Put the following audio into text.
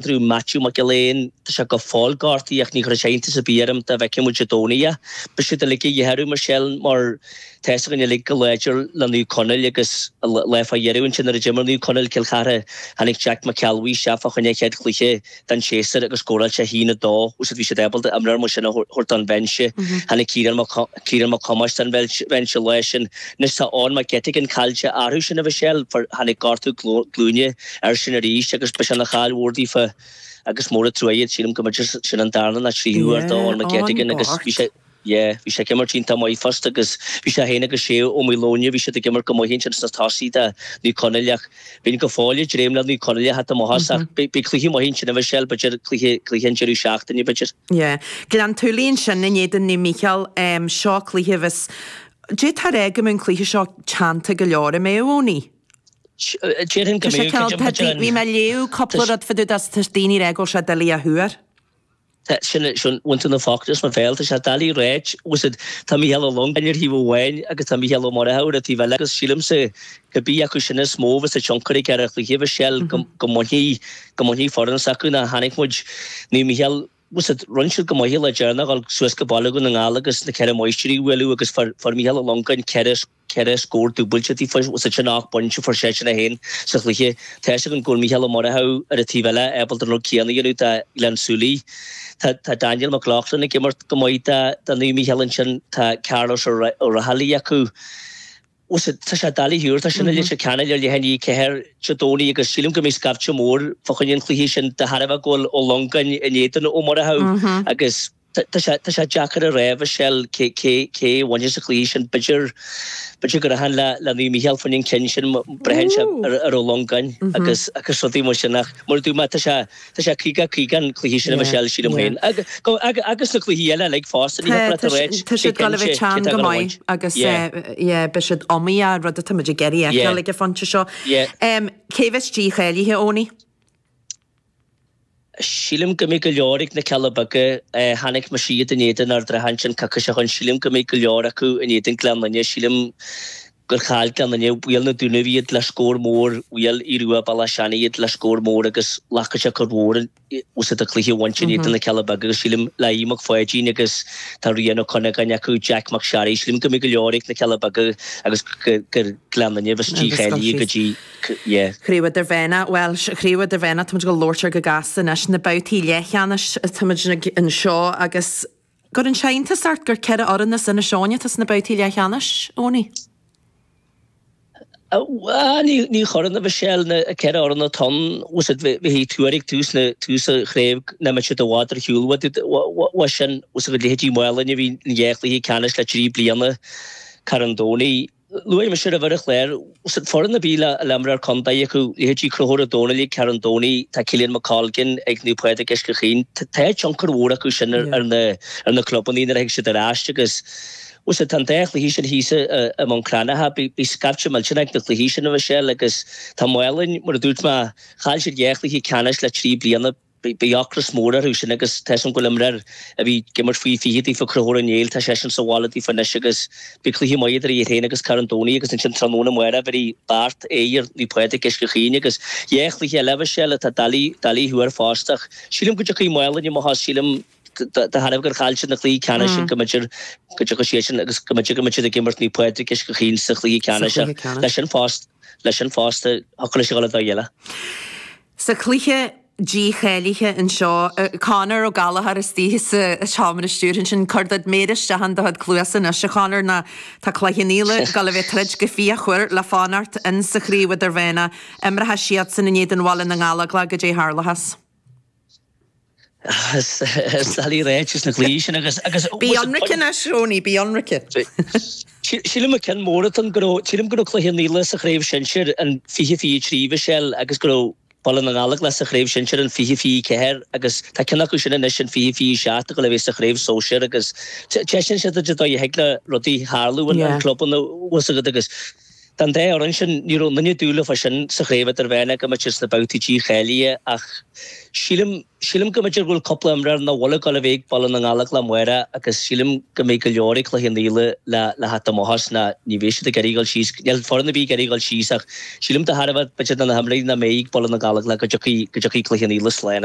Andrew Matthew Mac Giolla Eáin, Tá sé go fóill gortaithe ach ní chuirfeadh sé iontas ar bith orm dá bhfeicfeadh muid i gcónaí é. Beidh siad uilig de dhíth orthu, a Mhichelle, mar tá 's againn uilig chomh láidir le Naomh Conaill agus an lá fá dheireadh ansin nuair a d'imir Naomh Conaill, Cill Chartha, tháinig Jack McKelvey isteach fá choinne a chéad chluiche den séasúr agus scóráil seisean 2. Sea, bhí siad ábalta imreoir mar sin a thabhairt den bhinse. Tháinig Ciarán Mac Thomáis den bhinse an lá sin. Anois tá Eoghan Mac Eiteagáin caillte orthu sin, a Mhichelle, tháinig gortú glúine. Air sin arís agus ba sin caill mhór daofa agus mór an truaigh é, sílim go mb'fhéidir sin an darna ná tríú uair do Eoghan Mac Eiteagáin agus bhí sé, yeah, bhí sé ag imirt iontach maith fosta agus bhí sé féin agus Shea Ó Maoileoin, bhí siad ag imirt go maith ansin sna tosaithe do Naomh Conaill ach bíonn go fóill ag dréim le Naomh Conaill a theacht chun maitheas ach beidh cluichí maith ansin a Mhichelle, b'fhéidir, cluiche, cluiche an deireadh seachtaine, b'fhéidir. Yeah. Gleann tSúilí ansin in éadan Naomh Micheál, seo cluiche a bheas, táthar ag rá go mbeidh an cluiche seo teannta go leor, an mbeidh Eoin. Tá sé ceann tá dí bhí mé ag léamh cúpla rud fá dtaobh de is tá daoine ag rá go bhfuil sé doiligh a thuar. Tá sin é sin uainnte na fácta is na bhéal tá sé doiligh a ráit agus it tá Mícheál Ó Longáin ar thaobh amháin agus tá Mícheál Ó Murchú ar an taobh eile agus sílimse cibé acu sin is mó a bheas tionchar aige ar an chluiche bheas seal go go mbainfidh go mbainfidh foireann s'acu ná chonaic muid Naomh Mícheál bheas it rinne siad go maith le deireanas dhul suas go Baile Dhún na nGall agus na ceithre máistir a bhualadh agus fuair fuair Mícheál Ó Longáin ceithre ceithre scór dúbailte taobh thiar de sin ocht bpointe a fuair seisean é féin sa chluiche. Tá a fhios againn go bhfuil Mícheál Ó Murchú ar an taobh eile ábalta an rud céanna a dhéanamh do Ghleann tSúilí. Tá Daniel McLaughlin ag imirt go maith do Naomh Micheál ansin. Tá Carlos Ó Raghallaigh acu. Tá sé doiligh a thuar. Tá sin i gCloich Cheann Fhaola ar leath i ndiaidh a 4 Dé Domhnaigh agus sílim go mbeidh scaifte mór fá choinne an chluiche sin de thairbhe go bhfuil Ó Longáin in éadan Ó Murchú agus, Tá sé deacair a rá, Mhichelle, cé a bhainfidh sa chluiche sin. B'fhéidir, b'fhéidir go rachainn le Naomh Mícheál fá choinne an cheann sin, braitheann sé ar Ó Longáin agus rudaí mar sin ach mar a dúirt mé, tá sé 50 50 an cluiche sin, a Mhichelle, sílim féin. Agus na cluichí eile uilig fosta, ní thiocfadh leat a rá cé a bhainfidh. Tá siad ag gabháil a bheith teann go maith agus beidh siad iomaíoch, rud atá muid ag iarraidh a fheiceáil ag an phointe seo. Cé a bheas dícháilithe, Eoin? Sílim go mbeidh go leor ag na Cealla Beaga. Chonaic mise iad in éadan Ard an Rátha ansin tá coicís ó shin. Sílim go mbeidh go leor acu in éadan Gleann Fhinne. Sílim gur chaill Gleann Fhinne, Bhuail na Dúnaibh iad le scór mór, bhuail Aodh Rua Béal Átha Seanaidh iad le scór mór agus glacfaidh sé cor mhór usa do cluiche a bhaint in éadan na Cealla Beaga agus sílim le Aodh Mac Pháidín agus tá Ryan Ó Cuinneagáin acu, Jack Mac Sharry. Sílim go mbeidh go leor ag na Cealla Beaga agus gur Gleann Fhinne a bheas dícháilithe go dtí. Yeah, Craobh Idirmheánach, bhuel, Craobh Idirmheánach, táimid ag labhairt air go gasta anois, na babhtaí leathcheannais, táimid anseo agus an gcuireann sé iontas ort gur ceithre fhoireann as Inis Eoghain atá sna babhtaí leathcheannais, Ownie? Ní chuireann, a Mhichelle, na ceithre fhoireann atá ann, tá fhios agat, shílfeadh tú ag tús na, tús an chraobh, nach mbeadh siad i bhfad ar shiúl mar sin, tá fhios agat, leithéidí Málainn a bhí in dhá chluiche ceannais le trí bliana, Carn Domhnaigh, Luaigh mise roimhe ar an chlár, tá fhios agat, foireann a bhfuil imreoir contae acu, leithéidí Chonchúir Ó Dónaill ag Carn Domhnaigh, tá Caolan McColgan ag Naomh Pádraig ag Uisce Chaoin, tá tionchar mhór acu sin ar na clubannaí nuair a thig siad ar ais agus, tá fhios agat, tá an dá chluiche sin thíos i mBun Cranncha, bhí scaifte millteanach ag na cluichí sin, a Mhichelle, agus tá Málainn, mar a dúirt mé, chaill siad dhá chluiche ceannais le trí bliana. Beidh ocras mór orthu sin agus tá fhios agam go bhfuil imreoir a bhí ag imirt faoi 20 daofa, Conchúr Ó Néill, tá seisean sa bhaile daofa anois agus beidh cluiche maith idir iad féin agus Carn Domhnaigh agus ansin tráthnóna amárach imreoidh Beart in éadan Naomh Pádraig Uisce Chaoin agus, yeah, cluiche eile a bheas sé le tá doiligh, doiligh a thuar fosta ach sílim go dtiocfaidh Málainn amach as, sílim de thairbhe gur chaill siad na cluichí ceannais sin go mb'fhéidir go dtiocfadh siad sin agus go mb'fhéidir go mbeidh siad ag imirt Naomh Pádraig Uisce Chaoin sa chluiche ceannais leis sin fosta, leis sin fosta, hocraigh sé go le do dhéile. Sa chluiche dícháilithe anseo, Conor Ó Gallchóir istigh sa seomra stiúrtha ansin, cuir do chuid méar isteach in do chuid cluasa anois, a Chonor, nó tá Cloich Cheann Fhaola ag goil a bheith ag troid go fíochmhar le fanacht ins an Chraobh Idirmheánach, imreoidh siadsan in éadan Bhaile na nGallóglach, goidé a tharlóchas. Is doiligh a rá ins na cluichí sin agus. Bí ionraic anois, Ownie, bí ionraic. Sílim gur ceann mór atá ann go raibh, sílim go raibh Cloich Cheann Fhaola sa Chraobh Shinsir in 20-23 bhí seal agus go raibh Baile na nGallóglach sa Chraobh Shinsir in 20-24 agus tá ceann acu sin anois in 20-27 ag goil a bheith sa Chraobh Sóisir agus taispeánann sé duit an dóigh a thig le rudaí tarlú i gclubanna, tá fhios agat, agus Tá an dá fhoireann sin, ní raibh aon duine ag dúil leofa sin sa Chraobh Idirmheánach go mbeadh siad sna babhtaí dícháilithe ach sílim, sílim go mb'fhéidir go bhfuil cúpla imreoir nach bhfuil ag goil a bheith ag Baile na nGallóglach amárach agus sílim go mbeidh go leor ag Cloich Cheann Fhaola le, le theacht amach as nó ní bheidh siad ag iarraidh dhul síos, níl foireann ar bith ag iarraidh dhul síos ach sílim de thairbhe b'fhéidir na na himreoirí nach mbeidh ag Baile na nGallóglach go dtiocfaidh, go dtiocfaidh Cloich Cheann Fhaola slán.